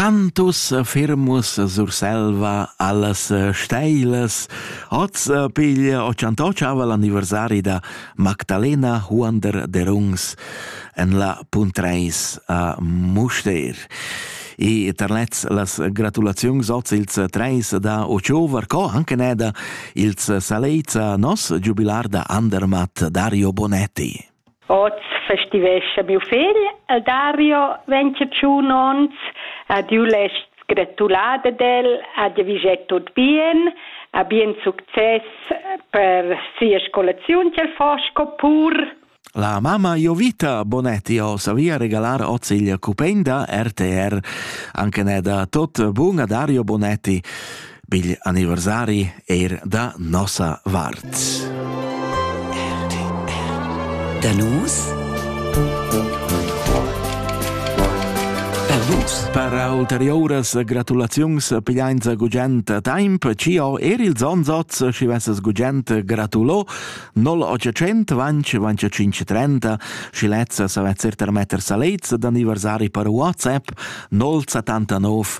Cantus firmus Surselva allas steilas hoz piglia ochantotschava l'anniversari da Magdalena Huonder Derungs en la Puntreis a Mustér. E terlets las gratulaziuns oz ils treis da Ochover, co anche ne da ils salezza nos giubilar da Andermatt Dario Bonetti. Oz festivescha miu fegl e Dario vegn che tschun onns ad jeu less gratular ad el, ad el viger tut bien, a bien success per sia scolaziun ch'el fa sco pur. La mamma Jovita Bonetti ho savia regalar oz il cupen da RTR. Anche ne da tot bun a Dario Bonetti. Pigl anniversari eir da nossa vart. Da nus? Per vus. Per ulteriuras gratulaziuns pigliainza gugent temp, ci ho er il Zonzoz, schi vesses gugent gratulo 0800 vanci 25 30, schi lezza savet certer metter sa lez d'anniversari per WhatsApp 079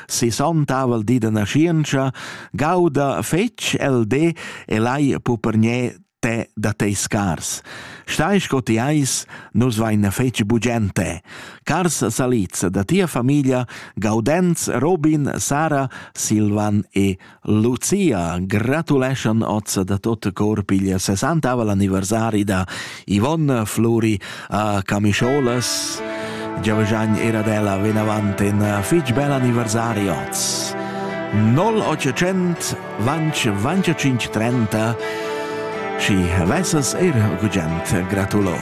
sesontavel di da naschientscha, gauda fetg el de e lai pupergnè te da tei scars. Stai sco ti eis, nus vain fetg bugente. Cars salids da tia famiglia, Gaudenz, Robin, Sara, Silvan e Lucia gratuleschan oz da tot cor pigl sessantavavel anniversari da Yvonne Fluri a Camischolas. Giavagagn era della venavant in fitg bel anniversari oz. 0800 vanch 25 30 și vesas er gugent gratulo.